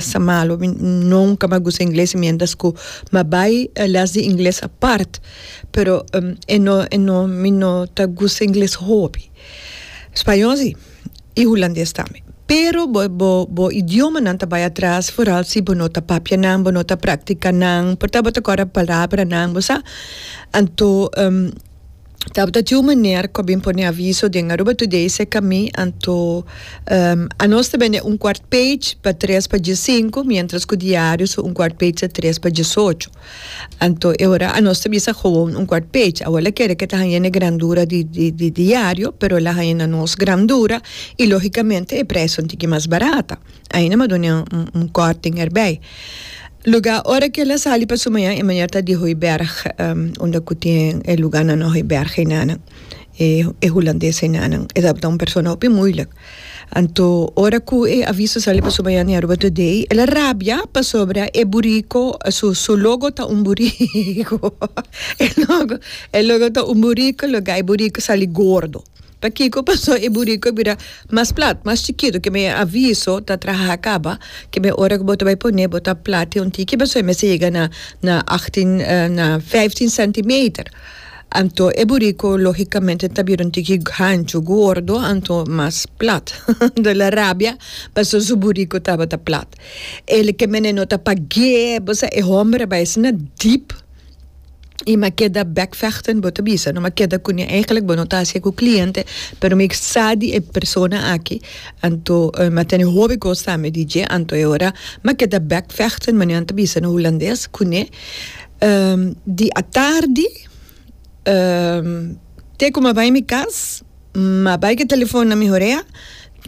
Sa malu, mi nunca mi a gusta ingles mientras cu mi a bay les di ingles apart, pero e no e no mi no ta gusta ingles hopi. Spañol si, y hulandes tambe. Pero bo bo bo idiomanan ta bay atras foral si bo no ta papia nan, bo no ta practica nan, por ta bo ta corda palabranan bo sa, anto. Tabata tin un meneer cu a bin pone aviso den Aruba Today seca mi, anto anos ta bende un cuart page pa tres pa diescinco, mientras cu diario su un cuart page ta tres pa diesocho. Anto e ora anos ta bisa gewoon un cuart page. Awor la kere cu e ta haya n'e grandura di di diario, pero la haya na nos grandura y logicamente e prijsnan tin ki mas barata. Ainda m'a done un kòrting erbei. Luga ora ke el a sali pa su maña, e mañer ta di Hooiberg, unda ku tin e luga nan no Hooiberg einanan, e hulandes einanan. E tabata un persona hopi muilik. Anto ora ku e a vist a sali pa su maña di Aruba Today, el a rabia pasobra e buriko, su logo ta un buriko. E logo ta un buriko, loke e buriko sali gordo. Pa kiko? Paso e burico a bira mas plat, mas chikito, keme aviso ta traha a caba, keme ora cu bo ta bay pone bo ta plat di un tiki, paso e mester yega na na achtin na vijftien centimeter, anto e burico logicamente ta bira un tiki hancho, gordo, anto mas plat, anto el a rabia paso su burico tabata plat, el keme no ta pag'e, bo sa e homber a bay asina deep. y mi a keda backvechten bo ta bisa no mi a keda cu ni eigenlic bo no ta hacia cu cliente pero mi sa di e persona aki anto mi a tene hopi cos tambe di dje anto e ora mi a keda backvechten manera nan ta bisa na hulandes cu ne di atardi te cu mi a bay mi cas. Ma bay ke telefon na mi horea,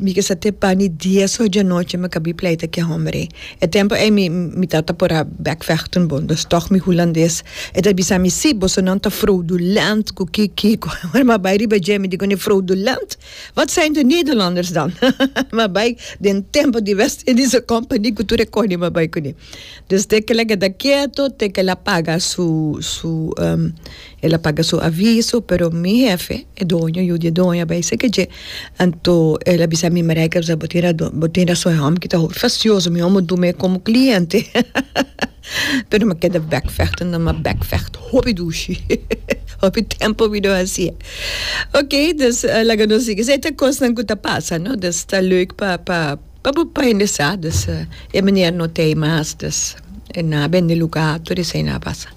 mi ke sa te pani dies oj di anochi mi a kabi pleita ke hombre. E tempo ey mi mi tata por a bekvechten bo, dos tog mi hulandes. E ta bisa mi si, boso nan ta fraudulent ku ki kiko. Ora mi a bay riba dje mi di kune fraudulent? Wat zijn de Nederlanders dan? Mi a bay den tempo di West Indische Company ku tur e koni mi a bay kune. Desde kel a keda kieto te kel a paga su su el a paga su aviso pero mi hefe e doño yu di e doño a bai seke dje anto el a bisa mi Maria Elsa bo tin radon bo tin rason e hòmber kita hopi facioso mi hòmber duna e komo kliente pero mi a keda bekvechten mi a bekvecht hopi dushi hopi tempo mi lo hasié okay laga nos sigui esei ta kosnan ku ta pasa no ta leuk pa pa Pa bo pa indesa dus e miner no tei mas dus e na bende luga tur esei na pasa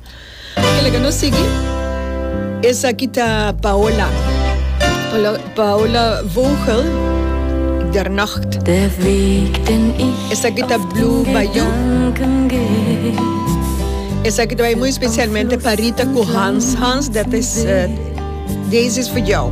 kila ke no sigui esaki ta Paola Paola Vogel der nacht esaki ta Blue by you esaki ta bai muy specialmente pa Rita cu Hans Hans dat is deze is for jou.